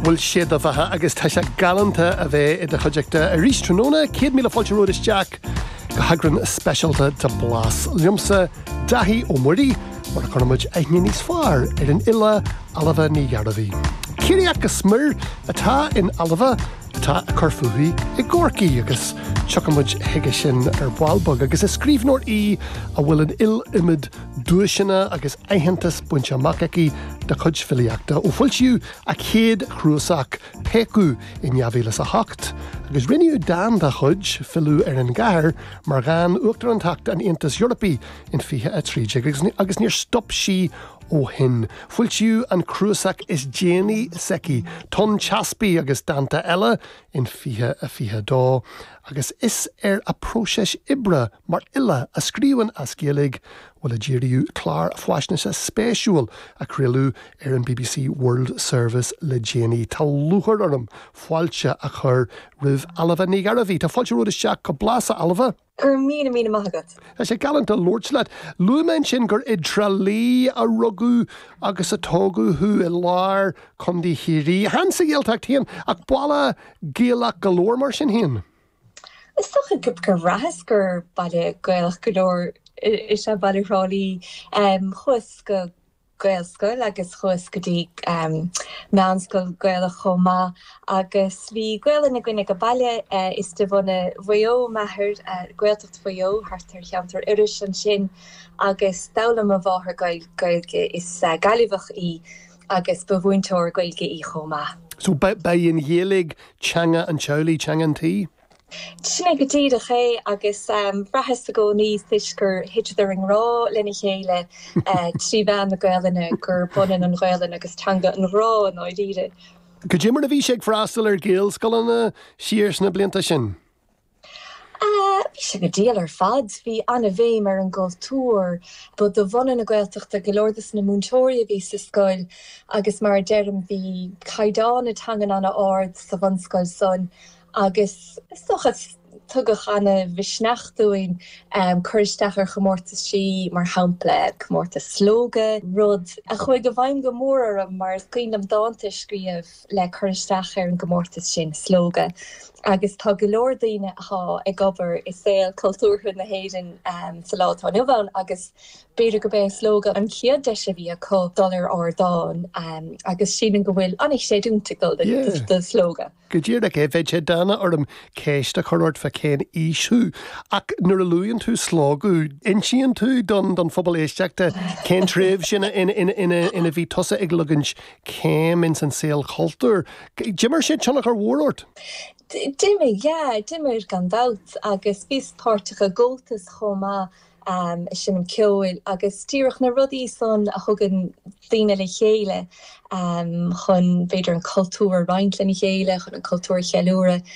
Bhuel sé do bheatha agus tá sé galánta a bheith i do chuideachta arís tráthnóna. Céad míle fáilte romhat isteach go heagrán speisialta de Blas. Liomsa, Dáithí Ó Muirí, mar a chuireas muid aithne níos fearr ar an fhile Ailbhe Ní Ghearbhaigh. Ciarraíoch go smior atá in Ailbhe atá ag cur fúithi i gCorcaigh agus tiocfaidh muid chuige sin ar ball beag, agus is scríbhneoir í a bhfuil an iliomad duaiseanna agus aitheantas bainte amach aici dá cuid filíochta ó foilsíodh a céad chnuasach, Péacadh, in 2008, agus rinneadh dán dá cuid, Filleadh ar an gCathair, mar dhán Uachtarántacht an Aontais Eorpaigh in 2013 agus níor stop sí ó shin. Foilsíodh an cnuasach is déanaí s'aici, Tonn Teaspaigh agus Dánta Eile, in 2022 agus is ar a próiseas oibre, Mar fhile a scríobhann as Gaeilge, bhuel a díríodh clár faisnéise spéisiúil a craoladh ar an bbc World Service le déanaí, tá lúchair orm fáilte a chur roimh Ailbhe Ní Ghearbhaigh. Tá fáilte romhat isteach go Blas a Ailbhe! Go raibh míle maith agat! Tá sé galánta labhairt leat. Luaigh mé ansin gur i dTrá Lí a rugadh agus a tógadh thú, i lár Chontae Chiarraí. Chan sa Ghaeltacht féin, ach baile Gaelach go leor mar sin féin. Is dócha gur bhraitheas gur baile Gaelach go leor is ea baile Thrá Lí. Chuas go Gaelscoil agus chuas go dtí meánscoil Gaelach chomh maith agus bhí Gaolainn againn ag an baile. Is de bhunadh Mhaigh Eo m'athair, Gaeltacht Mhaigh Eo thart ar cheantar Iorrais ansin, agus d'fhoghlaim mo mháthair Gaeilge, is Gaillimheach í. Agus ba mhúinteoir Gaeilge í chomh maith. So, ba í an Ghaeilge teanga an teaghlaigh, teanga an tí? Sin é go díreach é agus bhraitheas i gcónaí toisc gur thiteadar i ngrá lena chéile trí mheán na Gaelainne gurb ionann an Ghaelainn agus teanga an ghrá i ndáiríre. Cad é mar a bhí sé ag freastal ar Ghaelscoileanna siar sna blianta sin. Bhí sé go diail ar fad. Bhí an-bhéim ar an gcultúr. Ba de bhunadh na Gaeltachta go leor de na múinteoirí a bhí sa scoil agus mar a deirim, bhí caighdeán na teangan an-ard sa bhunscoil san agus, is dócha, tugadh an-mhisneach dúinn cur isteach ar chomórtaisí, mar shampla, comórtas Slógadh, rud a chuaigh i bhfeidhm go mór orm mar is cuimhin liom dánta a scríobh. le cur isteach ar an gcomórtas sin Slógadh agus tá go leor daoine atá ag obair i saol cultúrtha na hÉireann sa lá atá inniu ann agus b'fhéidir gurb é Slógadh an chéad deis a bhí acu dul ar ardán agus sílim go bhfuil an-chreidiúint ag dul do Slógadh. Go díreach é, bheadh sé dána orm ceist a chur ort fá cén aois thú ach nuair a luann tú Slógadh insíonn tú don phobal éisteachta cén tréimhse ina bhí tusa ag leagaint céim ins an saol cultúir. D'imir sé tionchar mhór ort? D'imir, yeah. D'imir gan dabht agus bhíos páirteach i gComhaltas chomh maith, seinm ceoil agus díreach na rudaí san a thugann daoine le chéile chun b'fhéidir an cultúr a roinnt lena chéile, chun an cultúr a cheiliúradh.